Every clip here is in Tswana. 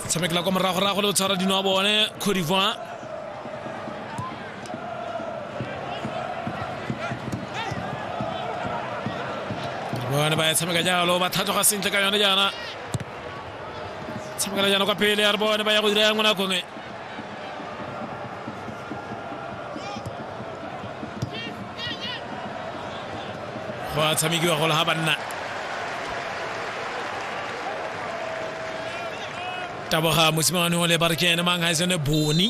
tshamekela kwa moragorago le go tshwara dino wa bone cote d'ivoire bone ba ya tshameka jalo ba tlhatlhoga sentle ka yone jaana tshamekela jaana kwa pele ya re bone ba ya go dira ya ngwana kongwe gwa tshamekiwa gole ga banna taboga mosimane o le ba re ke ene mang ga e sene bone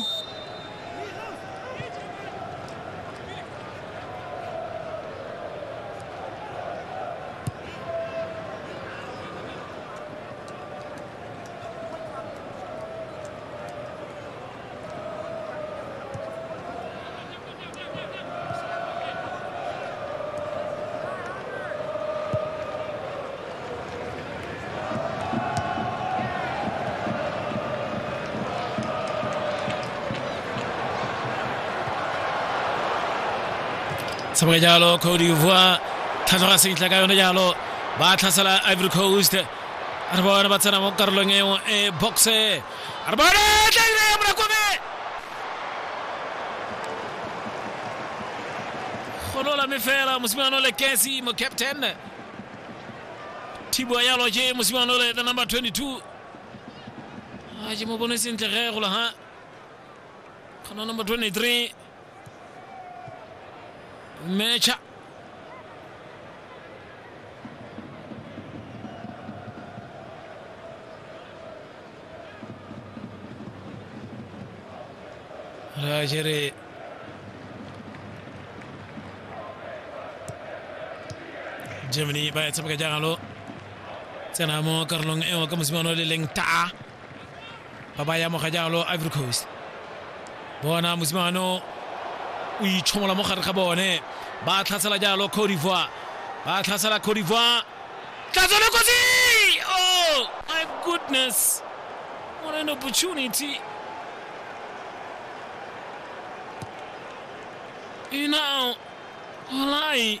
tshameka jalo cote d'ivoire tlhatlhoga sentle ka yone jalo ba tlhasela ivory coast re bone ba tsena mo karolong eo e boxe re bone tlaile ya morakome golola me fela mosimane ole kesi mo captain thibo ya loje mosimane ole the number 22 a ke mo bone sentle ge golo ha khona number 23 mecha Rajere Germany ba ya tshameka jagalo tsena mo karolong e nngwe ka mosimane o le leng taa ba ba yamoga jalo ivory coast bona mosimane o itshomola mo gare ga bone ba tlhasela jalo cote d'ivoire ba tlhasela cote d'ivoire tlatsone kotsi oh my goodness what an opportunity you know walai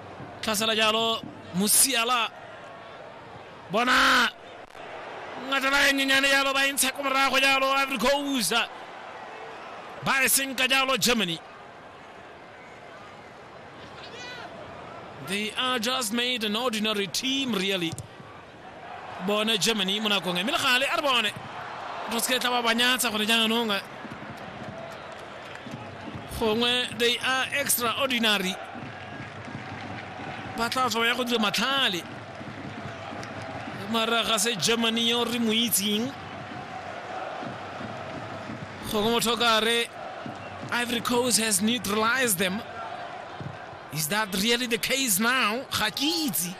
tlhasela jalo mosiala bona ngatela e nyenyane jalo ba e ntsha ko morago jalo ivory coast ba e senka jalo germany they are just made an ordinary team really bone germany mo nakong e mme le gale a re bone re se ke tla ba banyatsa gore jaanong gongwe they are extraordinary ba tla tswa ya go dira matlhale mara ga se germany yo re mo itseng gongwe motho o ka re ivory coast has neutralized them is that really the case now ga ke itse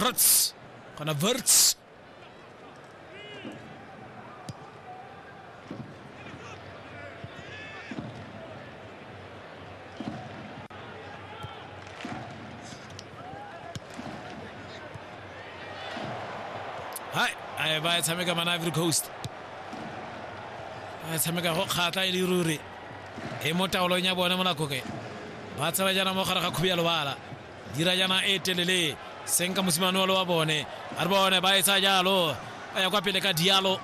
Writs. Gaan na Writs. Hai, ai ba tshameka mana Ivory Coast. Ba tshameka go kgatla e le ruri. e mo taolong ya bone mo nakoke ba tsela jaana mo gare ga khubi ya lobala dira jaana e telele seng ka mosimane wa wa bone a re bone ba etsa jalo a ya kwa pele ka dialo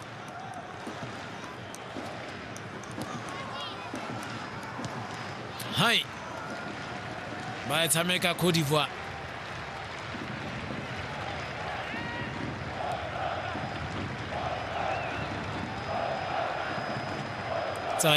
hai ba e tshameka cote divoire tsaya